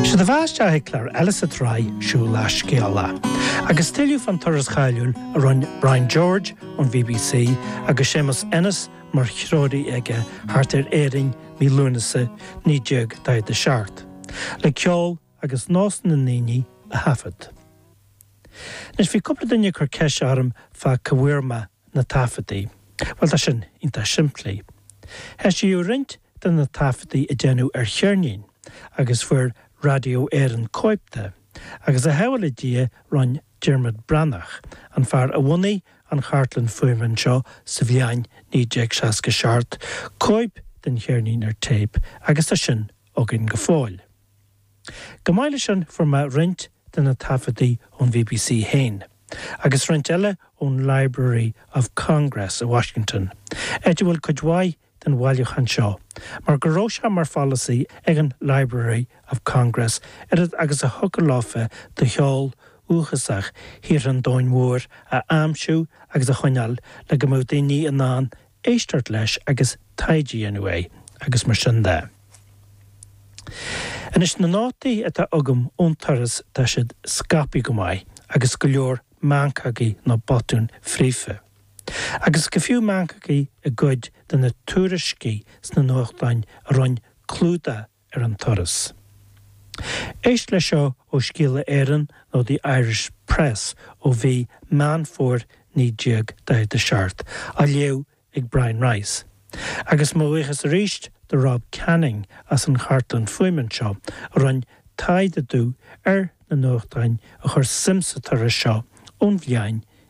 Sé do bheatha isteach chuig clár eile sa tsraith Siúlach Scéalach. Agus tuilleadh fán turas cáiliúil a rinne Brian George ón BBC agus Séamus Ennis mar threoirí aige thart ar Éirinn mí Lúnasa 1947, le ceol agus nós na ndaoine a thaifead. Anois bhí cúpla duine cur ceist orm fá cá bhfuair mé na taifeadtaí? Bhuel, tá sin iontach simplí. Heisíodh roinnt de na taifeadtaí a deineadh ar cheirnín agus fuair Radio Éireann cóip de agus a bhuí le Dia rinn Diarmuid Breathnach, an fear a bhunaigh an chartlann fuaime anseo sa bhliain 1967, cóip den cheirnín ar téip agus tá sin againn go fóill. Chomh maith leis sin fuair mé roinnt de na taifeadtaí ón BBC fhéin, agus roinnt eile ón Library of Congress i Washington, áit a bhfuil cuid mhaith den bhailiúchán seo, mar go raibh sé mar pholasaí ag an Library of Congress oiread agus a thiocfadh leofa de cheol dúchasach thíortha an domhain mhóir a aimsiú agus a choinneáil le go mbeadh daoine in ann éisteacht leis agus taighde a dhéanamh air agus mar sin de. Anois na nótaí atá agam ón turas tá siad scaipthe go maith agus go leor meancógaí nó botúin fríofa. Agus go fiú meancógaí i gcuid de na tuairiscí sna nuachtáin a rinn clúdach ar an turas. Éist leis seo ó Scéala Éireann nó The Irish Press ó mhí Meán Fómhair 1947, á léamh ag Brian Rice. Agus mo bhuíochas arís do Rob Canning as an chartlann fuaime anseo a rinn taighde domh ar na nuachtáin a chuir suim sa turas seo ón bhliain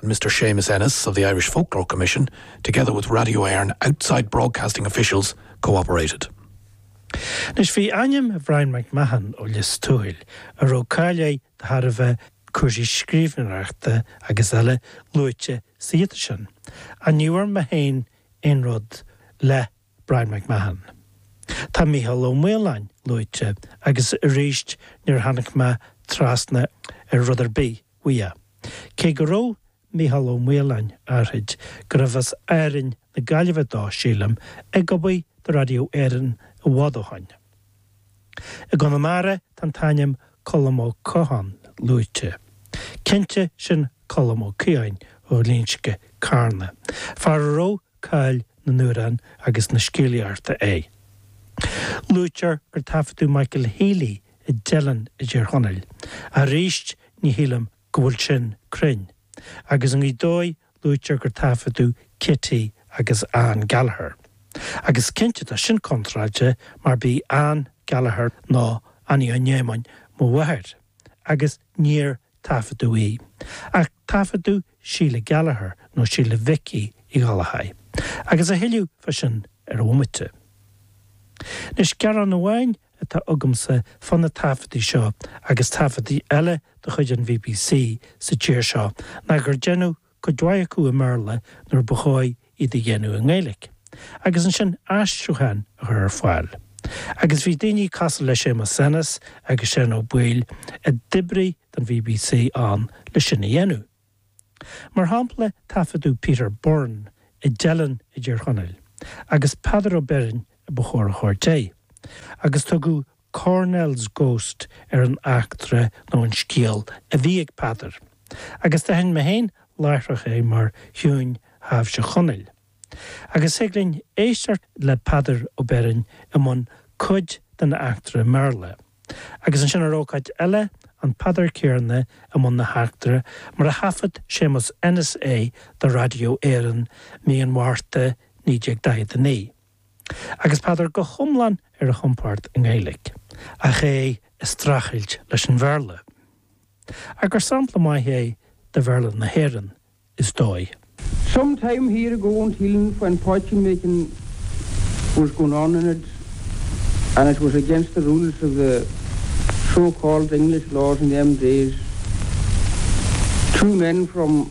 and Mr Séamus Ennis of the Irish Folklore Commission, together with Radio Éireann outside broadcasting officials, co-operated. Anois, bhí ainm Bryan McMahon ó Lios Tuathail, a raibh cáil air de thairbhe cúrsaí scríbhneoireachta agus eile, luaite sa ghiota sin. Ach ní bhfuair mé féin aon rud le Bryan McMahon. Tá Mícheál Ó Maoláin luaite agus arís níor tháinig mé trasna ar rud ar bith uaidh, cé go raibh Mícheál Ó Maoláin áithrid gurb as Árainn na Gaillimhe dó, sílim, ag obair do Radio Éireann i bhfad ó shoin. I gConamara tá an t-ainm Colm Ó Catháin luaite. Cinnte sin Colm Ó Caodháin ó Ghlinsce, Carna, fear a raibh cáil na n-amhrán agus na scéalaíochta é. Luaitear gur taifeadadh Michael Healy i dTeileann i dTír Chonaill, ach arís ní shílim go bhfuil sin cruinn, agus i nGaoth Dobhair luaitear gur taifeadadh Kitty agus Ann Gallagher, agus cinnte tá sin contráilte mar b'í Ann Gallagher nó Annie Eoghain Éamainn mo mháthair, agus níor taifeadadh í. Ach taifeadadh Síle Gallagher nó Síle Mhicí Uí Ghallchóir agus a thuilleadh fá sin ar an bhomaite. Anois gearán amháin atá agamsa fá na taifeadtaí seo agus taifeadtaí eile de chuid an bbc sa tír seo ná gur deineadh cuid mhaith acu i mBéarla nuair ba chóir iad a dhéanamh i nGaeilic agus ansin aistriúcháin a chur ar fáil. Agus bhí daoine cosúil le Séamus Ennis agus Seán Ó Baoill a d'oibrigh don bbc ann le sin a dhéanamh. Mar shampla taifeadadh Peter Byrne i dTeileann i dTír Chonaill agus Peadar Ó Beirn a ba chóir a thabhairt air agus tugadh Cornell's Ghost ar an eachtra nó an scéal a bhí ag Peadar agus d'aithin mé féin láithreach é mar thiúin thaibhse Chonaill. Agus thig linn éisteacht le Peadar Ó Beirn i mbun cuid den eachtra i mBéarla, agus ansin ar ócáid eile an Peadar céarna i mbun na heachtra mar a thaifead Séamus Ennis é do Raidió Éireann mí an Mhárta 1949. Agus Peadar go hiomlán ar a chompord i nGaeilge, ach é ag streachailt leis an Bhéarla. Ach gur sampla maith é de Bhéarla na hÉireann, is dóigh. Some time here ago in Teelin when poitín making was going on in it and it was against the rules of the so called English laws in them days. Two men from.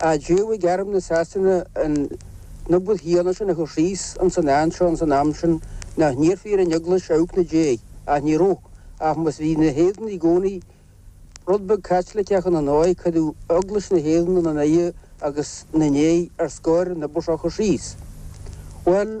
Aidéil ag arm na Sasana an obair shíoraí sin a chur síos ins an áit seo ins an am sin nach n-iarrfaí ar an Eaglais amharc ina déidh, ach ní rabh, ach mar bhí na hÉireannaigh i gcónaí rud beag Caitliceach ina ndóigh, cuireadh Eaglais na hÉireann ina n-aghaidh agus ina ndéidh ar scor an obair seo a chur síos. Bhuel.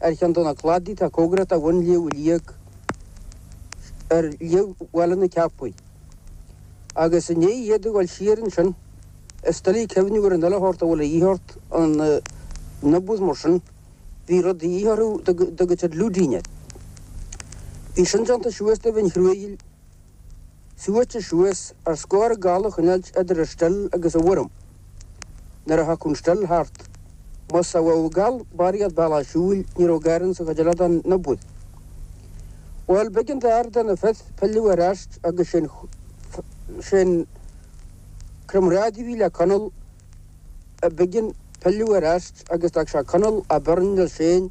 Ar cheann de na cladaí atá cóngarach de bhun Shliabh Liag ar Shliabh Bhaile na Ceapaí, agus i ndiaidh iad a dhul siar ansin is doiligh cuimhneamh ar an uile shórt a bhfuil a dhíth ort ann agus mar sin bhí rud de dhíth orthu a dtugtar luting air. Bhí sin déanta suas de mhin chruaighil. Suaite suas ar scor gal a choinneáilt idir an stil agus an worm. Nuair a thiocfadh an stil thart, más sa bhogha gal ba iad ba lá siúil ní raibh gar ann sa choidealeadán na bpus. Bhuel, b'eigean d'fhear de na fir pilleadh ar ais agus sin sin cromrádaí a bhí le Conall b'eigean pilleadh ar ais agus d'fhág sé Conall a' Burn Mill Sheáin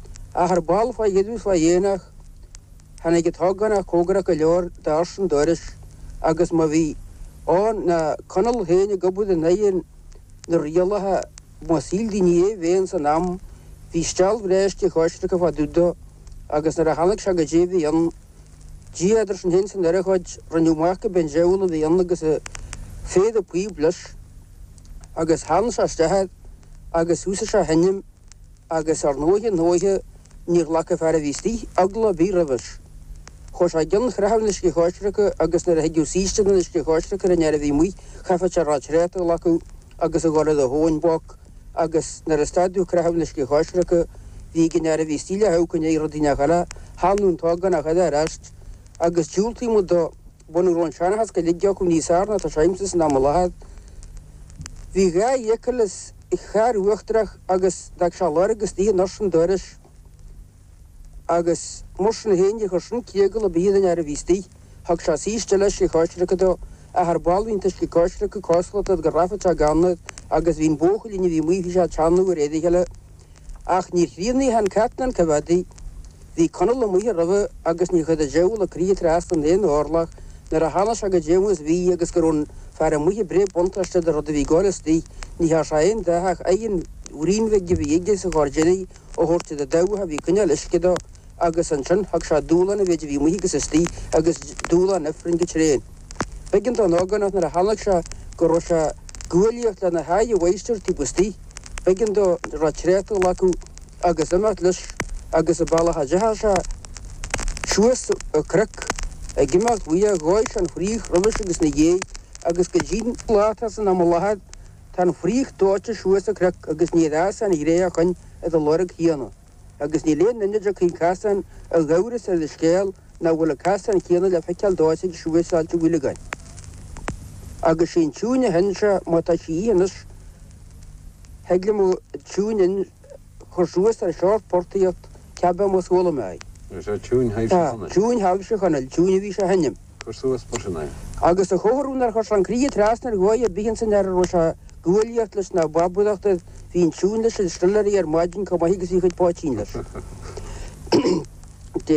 Ach ar ball, fá dheireadh is fá dhéidheanach, tháinig an t-ógánach comhgarach go leor d'ursain an dorais agus má bhí ann ná Conall féin ag obair in aghaidh na rialacha má shíl daoine é bheith ins an am, bhí steall bhreá uisce coisreactha fá dtaobh dó agus nuair a tháinig sé go dtí a bhí ann, Dia idir sinn féin 's an urchóid, rinneadh amach go b'in diabhal a bhí ann agus a féad a píob leis agus theann sé isteach air agus thúsaigh sé a sheinm. Agus ar ndóighe ndóighe níor ghlac an fear a bhí istigh eagla ar bith roimhis. Chuaidh sé i gcionn chraitheadh an uisce choisricthe agus nuair a thigeadh saoiste den uisce choisricthe ar an fhear a bhí amuigh chaithfeadh sé retreat a ghlacadh agus a ghabháil do thóin back agus nuair a stadadh craitheadh an uisce choisricthe bhí ag an fhear a bhí istigh le hamharc i ndéidh rud inteacht eile, theannadh an t-ógánach eile ar ais agus diúltaíonn muid dó Bunadh a raibh an seanchas go léir acu níos fearr ná tá sé agamsa san am i láthair. Bhí dhá fhiacail sa charr uachtarach agus d'fhág sé lorg istigh in ursain an dorais. Agus mar sin féin níor chuir sin critheagla ar bith ar an duine a bhí istigh. Thug sé saoiste eile uisce coisreactha dó, ach ar ball bhí an t-uisce coisreactha cosúlachta go rithfeadh sé gann air agus bhí an buachaill a bhí amuigh bhí sé ag teannadh air iarraidh eile. Ach níor chríochnaigh an cartún an coimhead. Bhí Conall amuigh roimhe agus níor chuir an diabhal an chríoch trasna in aon orlach nuair a chonaic sé caidé mar bhí agus go raibh an fear amuigh ag breith buntáiste de rud a bhí ag gabháil istigh. Ní thearn sé aon dath ach aon bhraon beag a bhí aige sa ghairdín a thabhairt don dabhach a bhí ag coinneáil uisce dó. agus ansin thug sé dúshlán an mhéid a bhí amuigh agus istoigh agus dúshlán Ifrinn go tréan. B'eigean don ógánach nuair a chonaic sé go raibh sé ag guaillíocht lena haghaidh a mháistir taobh istoigh. B'eigean dó an retreat a ghlacadh agus imeacht leis agus an bealach a d'imigh sé suas an cnoc. Ag imeacht uaidh dhóigh sé an fraoch roimhis agus ina dhiaidh agus go dtí láithreach san am i láthair tá an fraoch dóite suas an cnoc agus níor fhás aon ghráinne ó shin ar an lorg chéanna. Agus níl aon duine dá gcuireann cás ná amhras ar an scéal nach bhfuil an casán céanna le feiceáil dó ag siúl suas Ailt Mhaoileagáin. Agus sí an tiúin a sheinneann sé, má tá sí í anois, thig liom an tiúin a chur suas ar sheort portaíocht, cé bith, mar chuala mé í. Is é Tiúin Thaibhse Chonaill. Tiúin Thaibhse Chonaill, tiúin a bhí sé a sheinm. Cur suas b'shin é. Agus a chomhartha nár chuir sé an chríoch trasna ar dhóigh ar bith ins an earrach a raibh sé ag guaillíocht leis na babhúdachtaibh bhí an tiúin leis an stiléirí ar maidin comh maith agus bhí a chuid poitín leis.